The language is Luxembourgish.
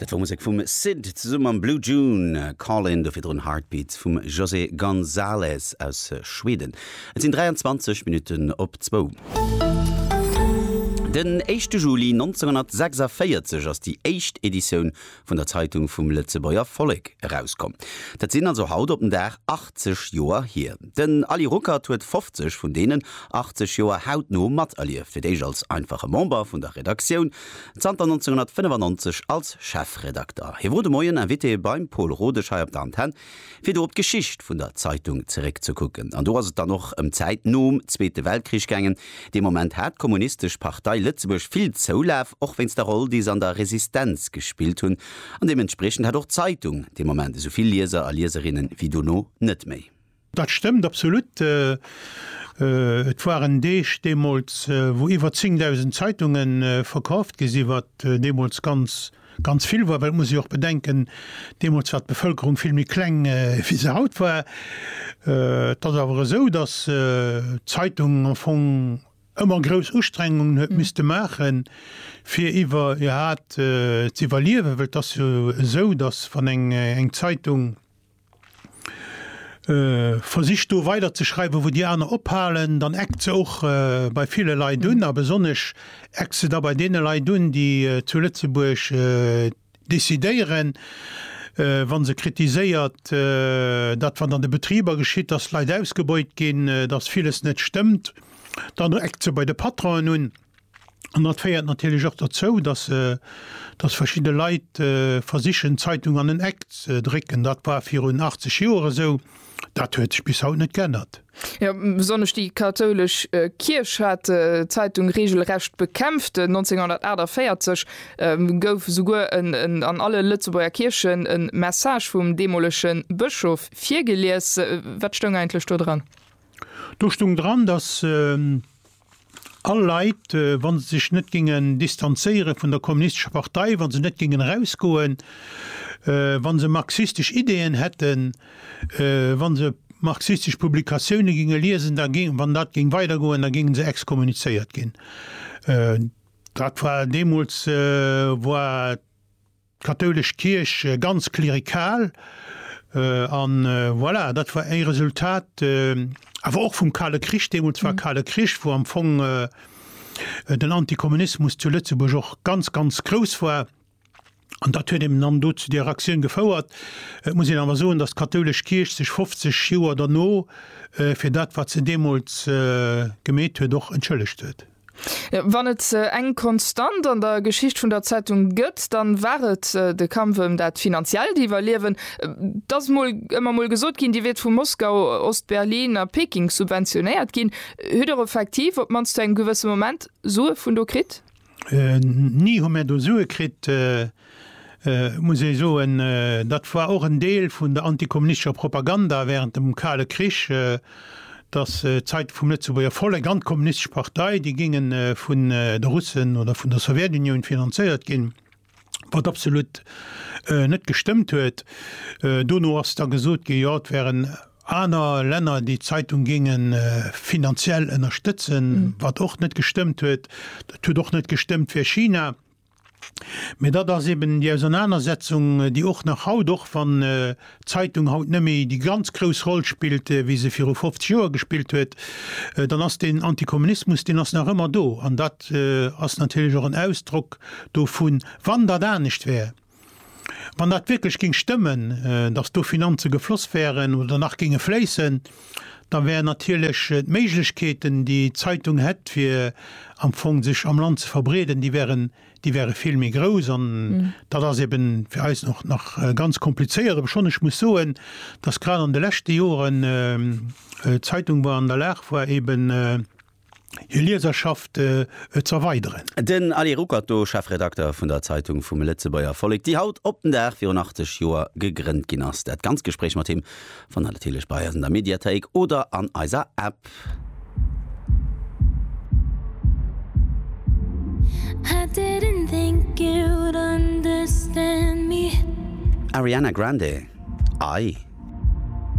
Dat war Musek vum Syd zesumme mam Blue June, Callin, do virdrun Heartbeats vum José González aus Schweden. Et sinn 23 Minutten op zwou. Den éischte Juli 1946 ass déi éischt Editioun vun der Zeitung vum Lëtzebuerger Vollek erauskomm. Dat sinn also haut op den Dag 80 Joer hier. Den Aly Ruckert huet 50 vun deenen 80 Joer hautno materlieft, fir d'éischt als einfache Member vun der Redaktioun, zanter 1995 als Chefredakter. Hie wor de Moien Invité beim Pol Rodesch hei op der Antenn. Fir do op d'Geschicht vun der Zeitung zeréckzekucken, an do ass et dann och ëm d'Zäit nom Zweete Weltkrich gaangen, dee Moment hat d'Kommunistesch Partei Lëtzebuerg vill Zoulaf, och wéinst der Roll, déi se an der Resistenz gespillt hunn, an deementspriechend hat och d'Zeitung dee Moment esou vill Lieser a Lieserinne wéi dono net méi. Dat stëmmt absolut. Et waren Deeg deemools, wou iwwer 10.000 Zeitunge verkaaft gi sinn, wat deemools ganz Ganz vill war, well et muss ee jo och bedenken, deemools war d'Bevëlkerung vill méi kleng, wéi se haut war. Et ass awer esou, datt d'Zeitung am Fong ëmmer grouss Ustrengungen huet misste maachen, fir iwwer, iwwerhaapt z'iwwerliewen, well et ass jo esou, datt wann eng Zeitung, Versicht do weider ze schreiwen, wou déi aner ophalen, dann eckt se och bei ville Leit un. A besonnesch eckt se da bei deene Leit un, déi zu Lëtzebuerg decidéieren, wa se kritiséiert, dat wat an de Betriber geschitt, dass d'Leit ausgebeut ginn, dass villes net stëmmt, dann eckt se bei de Patronen un. An dat féiert natierlech och derzou, datt datt verschidde Leit versichen d'Zeitung an en Eck ze drécken. Dat war virun 80 Joer esou, dat huet sech bis haut net geännert. Jo, besonnesch déi kathoulesch Kierch hat d'Zeitung reegelrecht bekämpft. 1948 gouf esouguer en an alle Lëtzebuerger Kierchen e Message vum deemolege Bëschof virgelies. Wat stoung eigentlech do dran? Do stoung dran, datt. All Leit, wa se sech net géingen distanzéiere vun der kommunistescher Partei, wa se net géingen erausgoen, wa se marxistesch Ideeën hätten, wa se marxistesch Publikatioune géinge liesen, da géing, wann dat géing weidergoen, da géinge se exkommunizéiert ginn. Dat war deemools war. D'kathoulesch Kierch ganz klerikal, an voilà, dat war ee Resultat awer och vum Kale Krich, deemools war Kale Krich, wou am Fong den Antikommunismus zu Lëtzebuerg och ganz, ganz grouss war. An dat huet eben dann do zu där Aktioun gefouert. Et muss een awer soen, datt d'kathoulesch Kierch sech 50 Joer derno fir dat, wat se deemools gemeet huet, och entschëllegt huet. Wann et eng Konstant an der Geschicht vun der Zeitung gëtt, dann war et de Kampf ëm dat finanziellt Iwwerliewen. Et ass mol ëmmer mol gesot ginn, Dir wiert vu Moskau, Ost-Berlin a Peking subventionéiert ginn. Hutt Dir effektiv, op d'mannst zu engem gewësse Moment, Sue vun do kritt? Ni hu mir do Sue kritt. muss ee soen, dat war och en Deel vun der antikommunistescher Propaganda während dem Kale Krich, dass d'Zeitung vum Lëtzebuerger Vollek an d'Kommunistesch Partei, déi géinge vun de Russen oder vun der Sowjetunioun finanzéiert ginn, wat absolut net gestëmmt huet. Dono ass da gesot ginn, jo, et wären aner Länner, déi d'Zeitung géinge finanziell ënnerstëtzen, wat och net gestëmmt huet. Et huet och net gestëmmt fir China. Mä dat ass eben déi Ausernanersetzung, déi och nach haut, och wann d'Zeitung haut net méi déi ganz grouss Roll spillt, wéi se viru 50 Joer gespillt huet, dann ass deen Antikommunismus, deen ass nach ëmmer do. An dat ass natierlech och en Ausdrock dovun, wann dat anescht wär, Wann dat wierklech géing stëmmen, datt do Finanze gefloss wäeren oder nach géinge fléissen, da wär natierlech d'Méiglechkeeten, déi d'Zeitung hätt, fir am Fong sech am Land ze verbreeden, déi wäeren, déi wäere vill méi grouss. An dat ass ebe fir eis och nach ganz komplizéiert, obschonn ech muss soen, datt grad an de leschte Joren d'Zeitung war an der Lag war, ebe, hir Lieserschaft ze erweideren. Den Ali Ruckert do, Chefredakter vun der Zeitung vum Lëtzebuerger Vollek, déi haut op den Dag virun 80 Joer gegrënnt ginn ass. Dat ganz Gespréich mat him fannt der natierlech bei eis an der Mediathéik oder an eiser App. Ariana Grande, I.